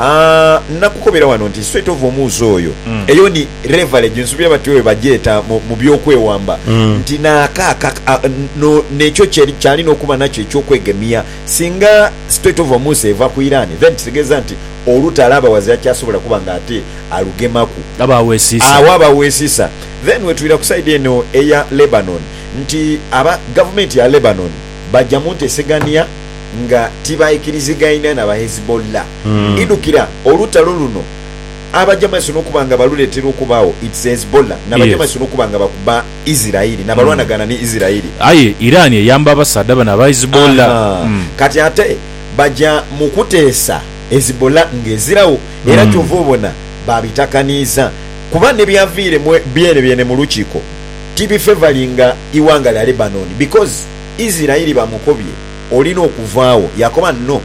Aah nakukobera wano nti straight ova omuuzi oyo eyo ni leverage nsubira bati oyo bagyeta mu mu byokwewamba nti naaka aka no nekyo kye kyalina okuba nakyo ekyokwegemia singa straight ova omuuzi eva ku Iran then kitegeza nti oluta alaba was akyasobola kuba nga ate alugemaku Aba awesisa. agho aba awesisa then wetwira ku side eno eya Lebanon nti aba gavumenti ya Lebanon bagya muntesegania nga tibaikirizigaine na Bahezbollah. Idhukira olutalo luno Abajamaisoni okuba nga baluleetera okubaagho, it's Hezbollah n'Abajamaisoni okuba nga bakuba Isiraeli na balwanagana ni Isiraeli. Aye Iran eyamba abasaadha bano aba Hezbollah. Ahaa. Kati ate baja mu kuteesa Hezbollah ng'eziragho era kyova obona baabitakaniiza kuba n'ebyaviire mu byenebyene mu lukiiko tibifevalinga ighanga lya Lebanon because. Isiraeli bamukobye, olina okuvaagho. Yaakoba, No,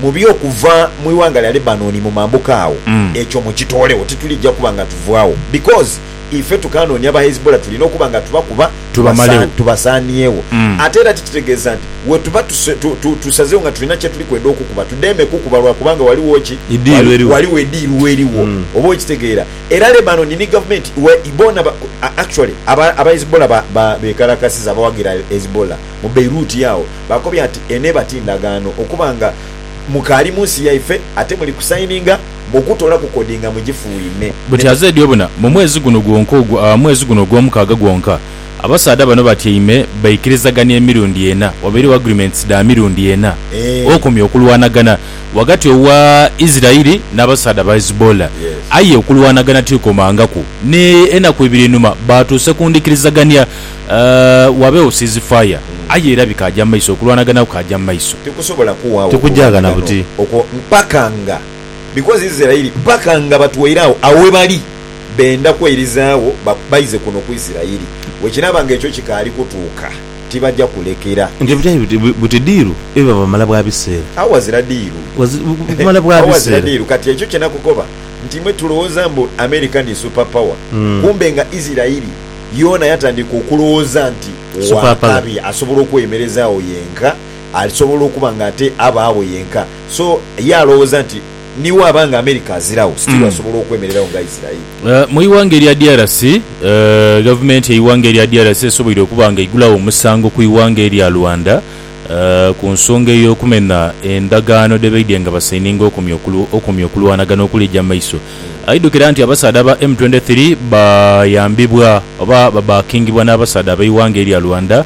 mubi okuva mu ighanga lya Lebanoni mu mambuka agho. Ekyo mukitoolegho, titulija kuba nga tuvaagho, because ife tukaanoonia ba Hezbollah, tulina okuba nga tubakuba tubasaaniegho. Ate era tikitegeeza nti wetuba tusazeegho nga tulina kyetuli kwenda okukuba, tudeme kukuba lwa kubanga ghaligho ki? Ghaligho ediiru eliwo. Oba okitegeera? Era Lebanon ni gavumenti we bona ba actually aba aba Hezbollah ba ba bekalakasiza abawagira Hezbollah mu Beirut yagho bakobya nti eno ebati ndagaano okuba nga mukaali munsi yaife ate muli ku sayininga okutola ku kodi nga mujifuuime Buti ne. azeedyo buna mu mwezi guno gwonka ogwo aa mwezi guno ogwomukaaga gwonka abasaadha bano batyaime baikirizagania emirundi ena wabaireo agreements dha mirundi ena Eeh. okomya okulwanagana ghagati owa Isiraeli n'abasaadha ba Hezbollah, aye okulwanagana tikukomangaku. N'enaku ibiri einhuma baatuuse ku ndhikirizagania wabeegho ceasefire, aye era bikaaja mu maiso, okulwanagana kukaaja mu maiso. Tikusobola kuwaagho okulwanagana okwo mpaka nga, because Isiraeli mpaka nga batwaire agho awebali benda kweirizaagho baize kuno ku Isiraeli. Bwekinaaba nga ekyo kikaali kutuuka. tibaja kulekera. Nti ebitali biti, buti diiru ebiba bumala bwa biseera. Agho ghazira diiru. Bumala bwa Agho ghazira biseera. diiru. Kati ekyo kye nakukoba nti imwe tulowooza mbu America ni super power, kumbe nga Isirairi yoona yatandika okulowooza nti Super power. wakabi asobola okweyemereza agho yenka, asobola okuba nga ate abaagho yenka. So ye alowooza nti. ni waaba nga America aziragho, still asobola okwemereragho nga Israeli. Mu ighanga erya DRC, gavumenti yeighanga erya DRC esoboire okuba nga eigulagho omusango ku ighanga erya Rwanda ku nsonga eyokumena endagaano dhebaidye nga basaininga okumya okulwanagana okuli eja maiso. Aidhukira nti abasaadha ba M twenty three bayambibwa oba babackingibwa n'abasaadha abeighanga erya Rwanda,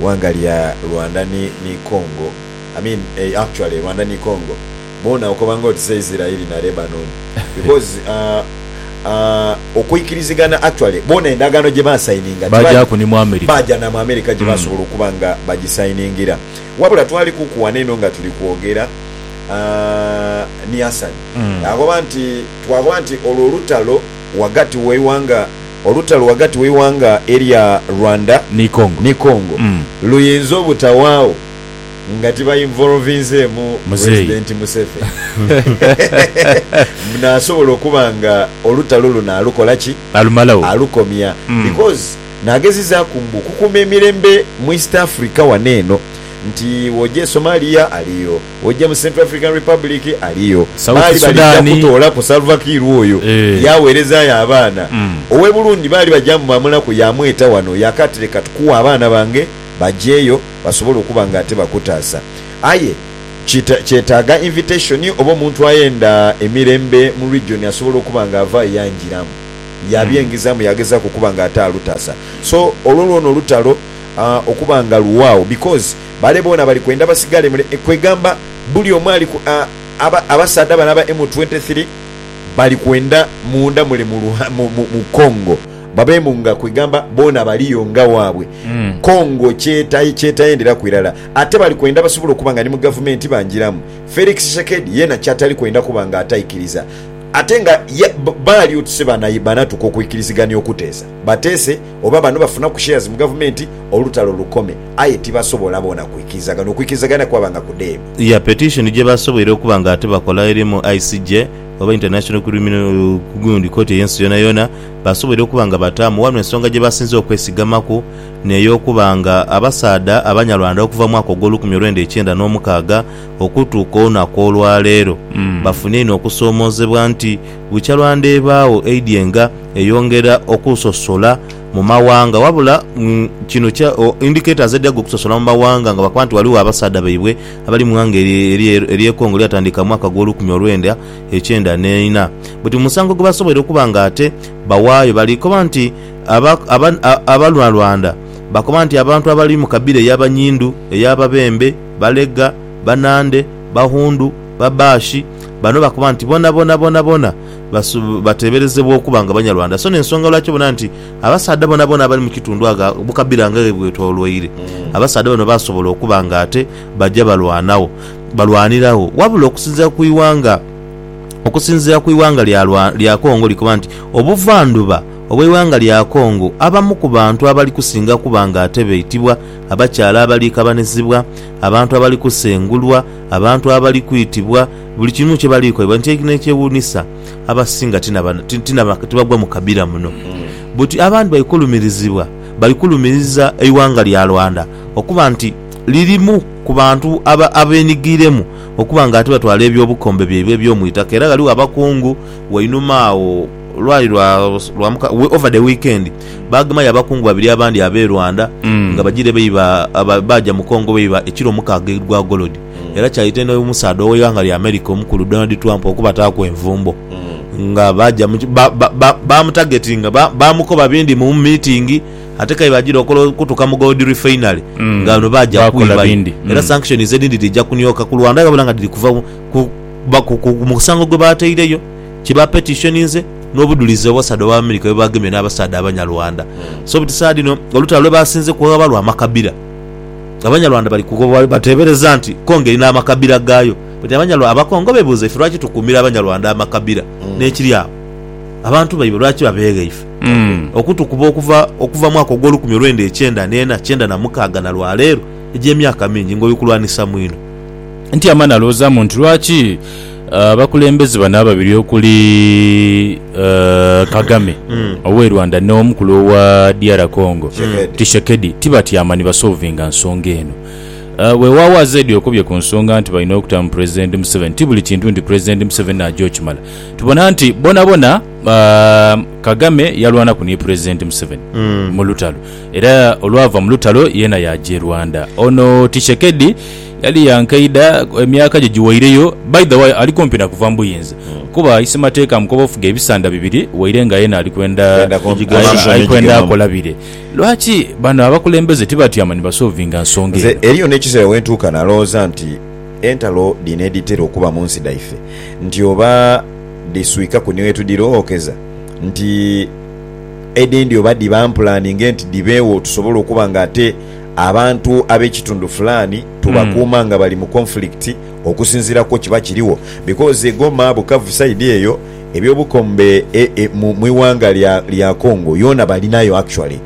eighanga lya Rwanda ni ni Congo I mean eeh actually Rwanda ni Congo boona okoba nga oti se Isiraeli na Lebanon because aah aah okwikirizigana actually boona endagaano gye ba sayininga gye Baagyaku ni mu America. baagya na mu America gye baasobola okuba nga bagisayiningira wabula twalikuku wano eno nga tuli kwogera aah ni Hassan akoba nti twakoba nti olwo olutalo ghagati w'eighanga Olutalo ghagati w'eighanga erya Rwanda Ni Congo. ni Congo Mm. luyinza obutawaagho nga tiba involvinzeemu Muzeeyi. President Museveni. Mbu naasobola okuba nga olutalo luno alukola ki? Alumalagho. alukomya Mm. because naagezizaaku mbu okukuuma emirembe mu East Africa wano eno nti w'oja e Somalia aliyo, Oja mu Central African Republic, aliyo. Baali South balija Sudan. kutoolaku Salva Kiir oyo Eeh. yaaweerezaayo abaana. Mm. Ow'e Burundi baali baja mubamulaku yaamweta wano yaaka ati leka tukuwe abaana bange bajeeyo basobole okuba nga ate bakutaasa. Aye kita kyetaaga invitation oba omuntu ayenda emirembe mu region asobola okuba nga avaayo yanjiramu yaabyengizaamu yaagezaaku okuba nga ate alutaasa. So olwo lwona olutalo aah okuba nga luwaagho because. Bale boona bali kwenda basigale mule, kwegamba buli omu ali ku, a, aba, abasaadha bano aba M23 bali kwenda munda mule mu luha, mu, mu, mu Congo, babeemu nga, kwegamba boona baliyo nga waabwe. Congo kyeta, kyetayenderaku irala. Ate bali kwenda basobole okuba nga ni mu gavumenti banjiramu. Felix Tshisekedi yeena kyatali kwenda kuba nga ataikiriza. Ate nga ya, ba, baali oti si bana, banatuka okwikirizigania okuteesa. Bateese. oba bano bafunaku shares mu gavumenti olutalo lukome aye tibasobola boona kwikirizagana, okwikirizagana kwaba nga kudheeme. Ya petition gyebasoboire okuba nga ate bakola eri mu ICJ oba International Criminal gundi kooti ey'ensi yoonayoona, basoboire okuba nga bataamu wano ensonga gyebasinze okwesigamaku n'ey'okuba nga abasaadha abanyarwanda okuva mu mwaka ogw'olukumi olwenda ekyenda n'omukaaga okutuuka olunaku olwaleero bafunye inho okusoomoozebwa nti Bukya lwa ndheebaagho eidyenga eyongera okusosola mu mawanga wabula kino kya indicators edyaga okusosola mu mawanga nga bakoba nti ghaligho abasaadha baibwe abali mu ighanga erye e Congo eryatandiika mu mwaka gwo lukumi olwenda ekyenda neina buti mu musango gwebasoboire okuba nga ate bawaayo bali koba nti Abanyarwanda bakoba nti abantu abali mu kabira eya Banyindu, eya Babembe, Balega, Banande, Bahundu. ba Baashi bano bakoba nti bonabona bonabona basu bateeberezebwa okuba nga Banyarwanda so n'ensonga lwaki obona nti abasaadha bonabona abali mu kitundu agha bukabira nga ghebwetoloire abasaadha bano baasobola okuba nga ate baja balwanagho balwaniragho wabula okusinziira ku ighanga Okusinziira ku ighanga lya lwa lya Congo likoba nti obuvandhuba obw'eighanga lya Congo abamu ku bantu abali kusinga kuba nga ate baitibwa abakyala abali kabanizibwa, abantu abali kusengulwa, Abantu abali kwitibwa buli kimu kye bali kolebwa. Nti n'ekyewuunisa, abasinga ti na ba, ti, ti na ba, tibagwa mu kabira muno. Buti abandi bali kulumirizibwa, bali kulumiriza eighanga lya Rwanda okuba nti lirimu ku bantu aba, abenigiiremu okuba nga ate batwala eby'obukombe byaibwe eby'omu itaka. Era ghaligho abakungu wainuma agho. Lwali lwa lwa muka we- over the weekend bagemayo abakungu babiri abandi abe Rwanda Mm. nga bajire beiba aba- baja mu Congo beiba ekiro mukaaga egwa gold era kyaita eno omusaadha oweighanga lya America omukulu Donald Trump okubataaku envumbo nga baja mu ki- ba- ba- ba- bamutagetinga ba- bamukoba bindi mu meeting ate kaire ajire okola okutuka mu gold refinery Mm. nga bano baja Bakola kwibayo bindi. era Mm. sanctions edindi dhija kunioka ku Rwanda ghabula nga dhiri kuva ku- ba- ku- ku- ku musango gwebataireyo kye bapetishoninze n'obudhulizi abasaadha ba America bwe baagemye n'abasaadha Abanyarwanda. So buti saha dhino olutalo lwe baasinze kughaba lwa makabira. Abanyarwanda bali kughobwa bateebereza nti Congo erina amakabira gaayo. But Abanyarwanda, Abakongo beebuuza ife lwaki tukuumira Abanyarwanda amakabira n'ekiri agho abantu baibwe lwaki babeegha ife? Okutukuba okuva okuva mwaka ogw'olukumi olwenda ekyenda n'ena, kyenda na mukaaga na lwa leero egy'emyaka mingi ng'oli kulwanisa mwino. Nti ama nalwoozaamu nti lwaki Abakulembeze bano ababiri okuli Kagame owe Rwanda no mukulu owa DR Congo Tshisekedi tibatyama ni basolvinga nsonga eno. Wewawo Azedi okubye ku nsonga nti balina okuta mu Pulezidenti Museveni ti buli kintu nti Pulezidenti Museveni naja okimala. Tubona nti bonabona Kagame yalwanaku ni Pulezidenti Museveni mu lutalo era olwava mu lutalo yena yaja e Rwanda. Ono Tshisekedi. Yali ya nkaidha, emyaka gye giweireyo. By the way, ali kumpi na kuva mu buyinza kuba Isemateeka amukoba ofuga ebisanda bibiri waire nga yena ali kwenda ali kwenda akola bire. Lwaki bano abakulembeze tibatyama ni basolvinga nsonga eno? Nze eriyo n'ekiseera we ntuuka nalowooza nti entalo dhino edhitera okuba mu nsi dhaife nti oba dhiswikaku ni wetudhira ookeza nti edhindi oba dhiba mpulani nge nti dhibeewo tusobole okuba nga ate Abantu ab'ekitundu fulaani tubakuuma nga bali mu conflict okusinziira kwo kiba kirigho because e Goma, Bukavu side eyo eby'obukombe mu ighanga lya Congo yoona balinayo actually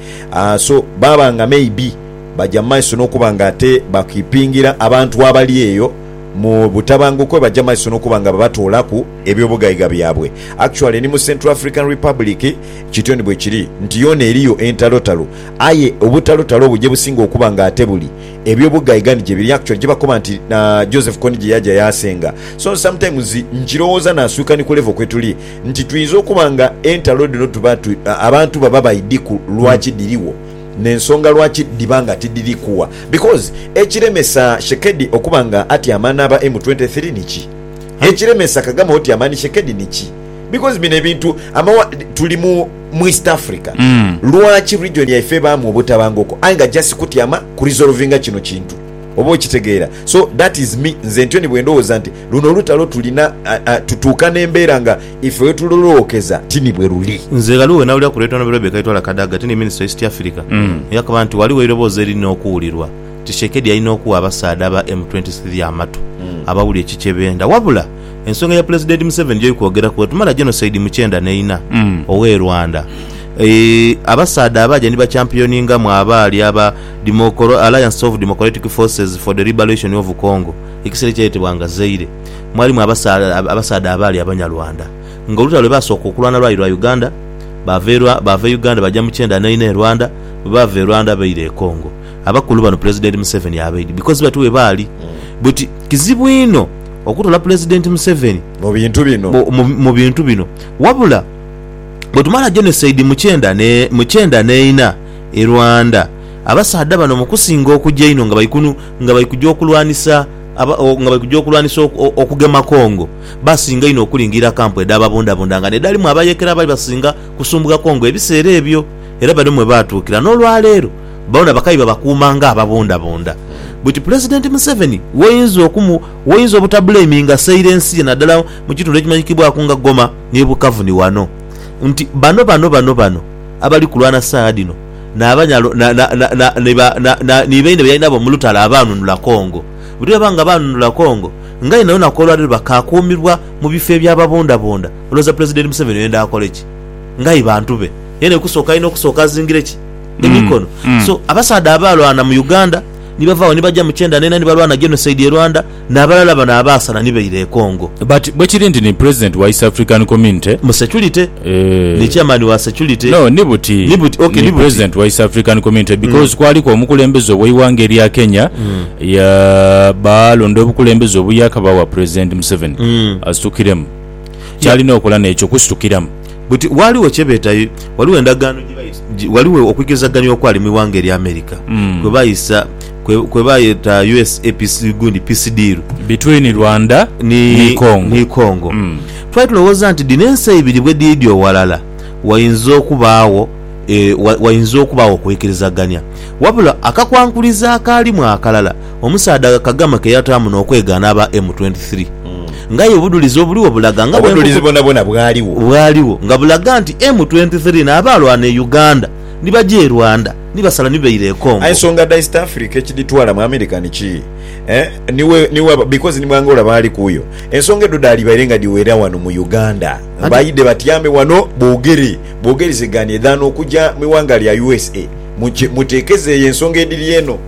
so baaba nga maybe baja mu maiso n'okuba nga ate bakeepingira abantu abali eyo mu butabanguko baja mu maiso n'okuba nga babatoolaku eby'obugaiga byabwe. Actually ni mu Central African Republic kityo ni bwekiri nti yoona eriyo entalotalo Aye obutalotalo obwo gyebusinga okuba nga ate buli ebyo bugaiga ni gyebiri actually gyebakoba nti Joseph Kony gyeyaja yasenga so sometimes nkirowooza naswika ni ku level kwetuli nti tuyinza okuba nga entalo dhino tuba abantu baba baidhi ku lwaki dhiriwo ne nsonga lwaki dhiba nga tidhiri kuwa because ekiremesa Shekedi okuba nga atyama naba M twenty three niki? Ekiremesa Kagame otyama ni Shekedi niki? Because bino ebintu amawa tuli mu. mu East Africa lwaki region yaife ebaamu obutabanguko aye nga just kutyama ku resolvinga kino kintu oba okitegeera so that is me nze ntyo ni bwendowooza nti luno olutalo tulina tutuuka nembeera nga ife wetulolookeza ti ni bweruli. Nze ghaliwo wenawulira ku Late Hon Rebecca Itwala Kadaga ti ni minister wa East Africa yakaba nti waliwo eiroboozi eririna okuwulirwa nti Tshiekedi alina okuwa abasaadha aba M twenty three amatu abawulire ki kyebenda wabula ensonga ya Pulezidenti Museveni gy'oli kwogeraku bwetumala genocide mu kyenda n'eina ow'e Rwanda, abasaadha abaaja ni bakyampiyoningamu abaali aba Dimokoro, Alliance of Democratic Forces for the Liberation of Congo, ekiseera ekyayetebwanga Zaire, mwalimu abasaadha abaali Abanyarwanda nga olutalo lwe baasooka okulwana lwali lwa Uganda. Baava e Uganda baja mu kyenda n'eina e Rwanda, bwe baava e Rwanda baira e Congo. Abakulu bano Pulezidenti Museveni abaidhi because bati we baali. Buti kizibu inho. okutola Pulezidenti Museveni mu bintu bino. mu bintu bino. Wabula bwetumala genocide mu kyenda ne mu kyenda neina e Rwanda, abasaadha bano mu kusinga okuja einho nga bali kunu nga bali kuja okulwanisa aba nga bali kuja okulwanisa oku okugema Congo, baasinga inho okulingirira kampu edha babundabunda nga nedhalimu abayekera abali basinga kusumbugha Congo ebiseera ebyo era bano mwe baatuukira n'olwaleero. Boona bakabi babakuuma nga ababundabunda. Bwiti Pulezidenti Museveni w'oyinza okumu w'oyinza obutabuleiminga saire ensi ye naddala mu kitundu ekimanyikibwaku nga Goma n'e Bukavu ni wano nti bano bano bano bano abali kulwana saagha dhino n'abanyalo na na na na ni ba na na ni baine be yali nabo mu lutalo abaanunula Congo. Bwiti baba nga baanunula Congo nga aye nayonaku olwaleero bakaakuumibwa mu bifo eby'ababundabunda olowooza Pulezidenti Museveni oyenda akole ki? Nga aye bantu be. Yena ekusooka alina okusooka azingire ki? emikono so abasaadha abaalwana mu Uganda ni bava agho ni baja mu kyenda neena ni balwana genocide e Rwanda n'abalala bano abaasala ni baira e Congo. But bwekiri nti ni President wa East African Community. Mu security. Eeh. Ni Chairman wa security. No, ni buti. Ni buti, ok, ni buti. Ni President wa East African Community because kwaliku omukulembeze ow'eighanga erya Kenya ya baalonda obukulembeze obuyaakaba bwa President Museveni asitukiremu. kyalina okola n'ekyo kusitukiramu. Buti, ghaligho kye beeta, ghaligho endagaano gye baisa, ghaligho okwigezagania okwali mu ighanga erya Amerika kwe baisa, kwe baayeta USA Peace, gundi Peace Deal, Between Rwanda ni Congo. ni Congo. Twali tulowooza nti dhino ensi eibiri bwe dhiidyo ghalala, wainza okubaagho, e, wa, wainza okubaagho okweikirizagania. Wabula akakwankulizo akaalimu akalala. Omusaadha Kagama ke yataamu n'okwegaana aba M23 nga aye obudhulizi obuligho bulaga nga Obudhulizi bwonabwona bwaligho. Bwaligho nga bulaga nti M23 n'abaalwana e Uganda ni baja e Rwanda ni basala ni baira e Congo. Aye ensonga dha East Africa ekidhitwala mu America ni ki? Eeh? Because ni mu Angola baali kuyo. Ensonga edho dhaalibaire nga dhiwera wano mu Uganda. Baidhe batyame wano boogere bwogerizegane dhan okuja mu ighanga lya usa. Muteekeze eyo ensonga edhiri eno.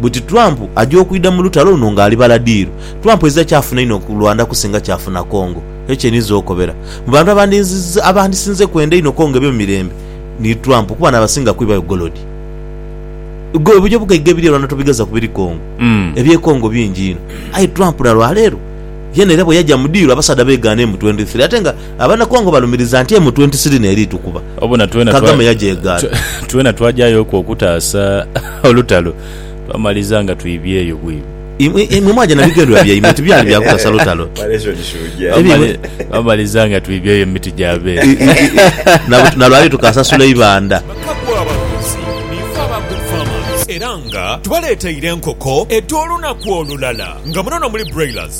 Buti Trump aja okwidha mu lutalo luno nga ali baladiiru. Trump ezira kyafuna inho ku Rwanda kusinga kyafuna Congo. Ekyo kyeninza okobera. Mu bantu abandinziza abandisinze kwenda einho Congo ebe mu mirembe ni Trump kuba nabasinga kwibayo gold. Gwe obuja obugaiga ebiri e Rwanda tobigaza ku biri Congo. Ebye Congo bingi inho. Aye Trump na lwaleero yena era bweyaja mu diiru abasaadha begaana emu twenty three ate nga Abanakongo balumiriza nti emutwe nti siri n'eri tukuba. Obona twena twa, Kagame yagyegaana. twena twagyayoku okutaasa olutalo, twamaliza nga twibyeyo bwibi. Imwe, imwe mwagya na bigendrerwa byaimwe nti byali bya kutasa lutalo. Twamali, twamaliza nga twibyeyo mu miti gya beene. Na, na lwali tukasasula eibanda. Bakagwa abaguzi, niife aba Good Farmers era nga tubaleeteire enkoko edh'olunaku olulala nga munono muli broilers.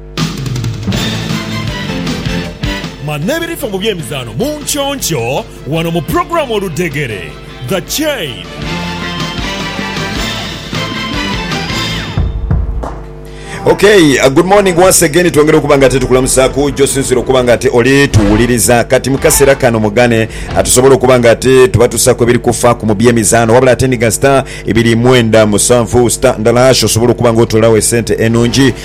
Manya ebirifa mu by'emizaano mu nkyonkyoo wano mu pulogulaamu Oludhegere, The Chain. Ok, uh, good morning once again twongera okuba nga tetukulamusaku gyosinzira okuba nga ate oli tuwuliriza kati mukasera kano mugane atusobola okuba nga ate tubatusaku ebiri kufa ku mu byemizano wabula ate ndiga star ebiri mwenda musanvu star ndala hash osobola okuba nga otolawo esente enungi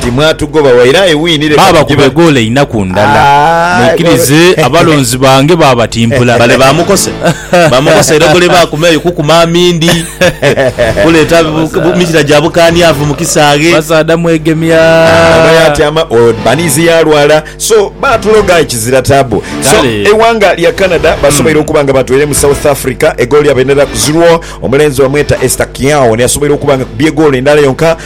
Timwatugoba waire aye wiini leka Baaba tugibale. kubegoole inaku ndala. Mwikirize abalonzi bange baabatimpula. Bale bamukose bamukose era ogole bakuma eyo kukuma amindi kuleta mikira gya bukaniavu mu kisaaghe. Basaadha mwegemya. Oba yatyama or baniizi yalwala so batuloga aye kizira taabu. So Kale. eighanga lya Canada basoboire okuba nga batweire mu South Africa egoolo lyabaira ku zirwo. Omulenzi bamweta Esther Kiao niasoboire okuba nga akubye egoolo endala yonka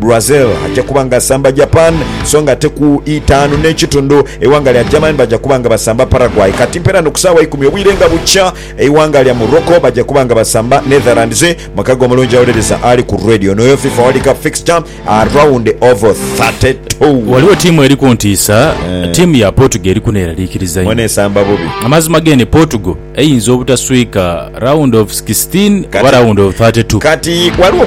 Brazil aja kuba nga asamba Japan, so nga ate ku itaanu n'ekitundu eighanga lya Germany baja kuba nga basamba Paraguay. Kati mpeera ni ku saawa ikumi obwire nga bukya, eighanga lya Morocco baja kuba nga basamba Netherlands. Mukago omulungi awuliriza ali ku radio n'oyo fifa World Cup fixture around of thirty two. Ghaligho tiimu eri ku ntiisa. Tiimu ya Portugal eri kuneeraliikiriza Mwene inho. esamba bubi. Amazima g'eno Portugal eyinza obutaswika round of sixteen oba Kati- round of thirty two. Kati ghaligho omu